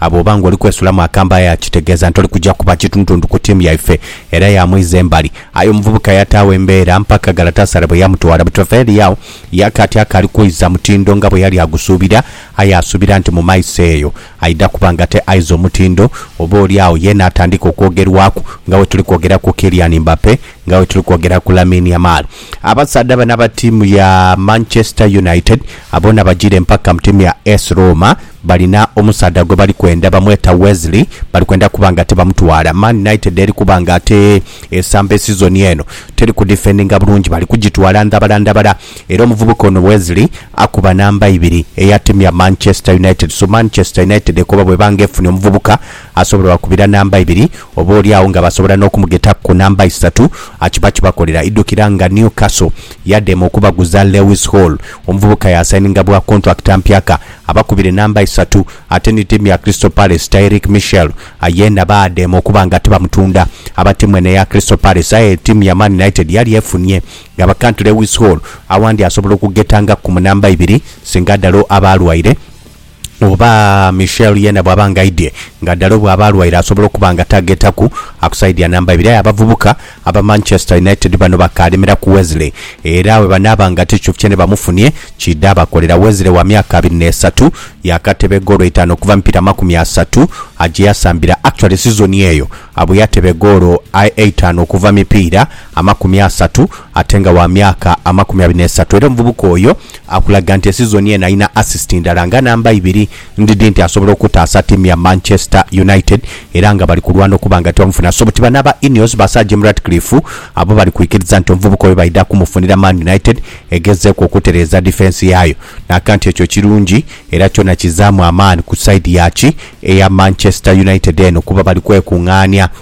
A Bw'oba ng'oli kwesulamu akambe aye akitegeeza nti oli kuja kuba kitundutundu ku tiimu yaife era yaamwiza embali. Aye omuvubuka yataagho embeera mpaka Galatasaray bwe yamutwala. Butrefer Liao yaka ati akaali kwidha mutindo nga bwe yali agusuubira aye asuubira nti mu maiso eyo aidha kuba ng'ate aiza omutindo oba oli agho ye naatandika okwogerwaku nga bwetuli kwogera ku Kylian Mbappe, nga bwetuli kwogera ku Lamine Yamal. Abasaadha bano aba tiimu ya Manchester United boona bajiire mpaka mu tiimu ya AS Roma. Balina omusaadha gwe bali kwenda bamweta Wesley, bali kwenda kuba nga tibamutwala. Man United eri kuba nga ate esamba esizoni eno, teri kudifendinga bulungi bali kugitwala ndhabala ndhabala era omuvubuka ono Wesley akuba namba ibiri eya tiimu ya Manchester United. So Manchester United ekoba bweba nga efunye omuvubuka asobola obakubira namba ibiri oba oli agho nga basobola n'okumugetaku ku namba isatu akiba kibakolera. Idhukira nga Newcastle yadema okubaguza Lewis Hall, omuvubuka yasayininga bwa kontulakiti mpyaka. Abakubire namba isatu ate ni tiimu ya Crystal Palace Tyrick Mitchell yeena baadema okuba nga tibamutunda. Aba tiimu eno eya Crystal Palace aye tiimu ya Man United yali efunie nga bakantu Lewis Hall awandi asobola okugetangaku ku mu namba ibiri singa Dalot aba alwaire oba Mitchell yeena bwaba nga aidhye nga Dalot bwaba alwaire asobola okuba nga tagetaku ku saidi ya namba ibiri aye abavubuka Aba Manchester United bano bakaalemera ku Wesley era bwe banaaba nga tichufye ni bamufunye kiidha abakolera. Wesley wa myaka abiri n'esatu yaakateba egoolo itaanu okuva mu mipiira amakumi asatu gye yasambira. Actually sizoni eyo abwe yateba egoolo eitaanu okuva mu mipiira amakumi asatu ate nga wa myaka amakumi abiri n'esatu era omuvubuka oyo akulaga nti esizoni eno alina assist ndala nga namba ibiri Ndidhi nti asobola okutaasa tiimu ya Manchester United era nga bali kulwana okuba nga tibamufuna so buti bano aba Ineos ba Sir Jim Ratcliffe abo bali kwikiriza nti omuvubuka oyo baidha kumufunira Man United egezeeku okutereeza difensi yaayo n'aka nti ekyo kirungi era kyona kizaamu amaani ku sayidi yaaki eya Manchester United eno kuba bali kwekungaania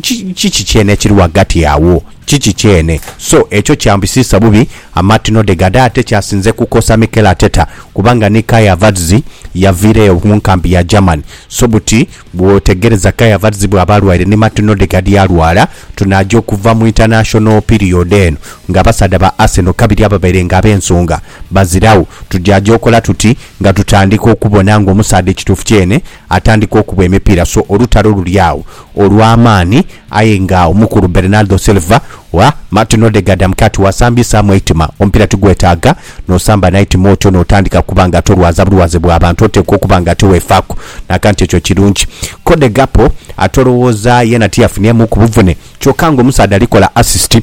Ki, kiki kyene ekiri ghagati agho, kiki kyene. So, ekyo kyambisiisa bubi amatino dhe ghade ate kyasinze kukosa Mikel Arteta, kubanga ni Kai Havertz yaviira eyo mu nkambi ya Germany. So buti bw'otegereza Kai Havertz bw'aba alwaire ni Martin Odegaard yalwala, tunaaja okuva mu international period eno ng'abasaadha ba Arsenal kabiri ababaire ng'ab'ensonga baziragho. Tujaaja okola tuti nga tutandika okubona ng'omusaadha ekituufu kyene Atandika okuba emipiira so olutalo luli agho olw'amaani aye nga omukulu Bernardo Silva wa Martin Odegaard amukira ati, Wasambisaamu eitima, omupiira tigwetaaga n'osamba n'eitima otyo n'otandika kuba nga tolwaza bulwaze bwa bantu, oteekwa okuba nga tiweefaaku n'akantu ekyo kirungi. Cody Gakpo ate olowooza yeena tiyafunyeemuuku buvune kyokka ng'omusaadha ali kola asisiti.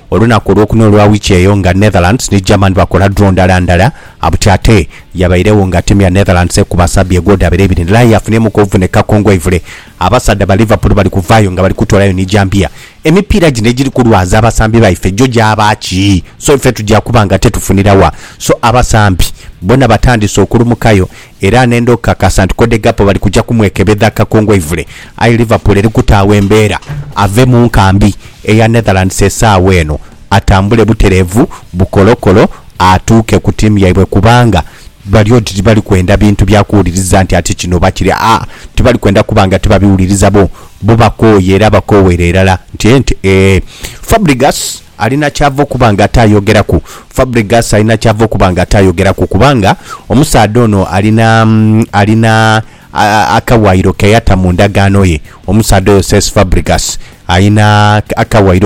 Olunaku olwokuna olwa wiiki eyo nga Netherlands ni Germany bakola draw ndala ndala, Abuti ate yabairegho nga tiimu ya Netherlands ekuba Serbia egooda bire ibiri ndala aye yafuniremu kobuvuneka kongwaivule. Abasaadha ba Liverpool bali kuvaayo nga bali kutoolayo ni jambiya. Emipiira gino egiri kulwaza abasambi baife gyo gyaba ki? So ife tugya kuba nga tetufunira wa? So abasambi bona batandise okulumukayo. Era nenda okukakasa nti Kodegapo bali kuja kumwekebedha akakungwaivule, aye Liverpool eri kutaagho embeera ave mu nkambi eya Netherlands esaawa eno atambule butereevu bukolokolo atuuke ku tiimu yaibwe kubanga bali oti tibali kwenda bintu bya kuwuliriza nti ati kino oba kiri aa tibali kwenda kuba nga tibabiwuliriza bo bo bakooye era bakooweera irala nti ente eeh Fabrigas. Alina ky'ava okuba nga ataayogeraku. Fabregas alina ky'ava okuba nga ataayogeraku kubanga omusaadha ono alina, alina akawaayiro ke yata mu ndagaano ye. Omusaadha oyo Cesc Fabregas alina akawaayiro.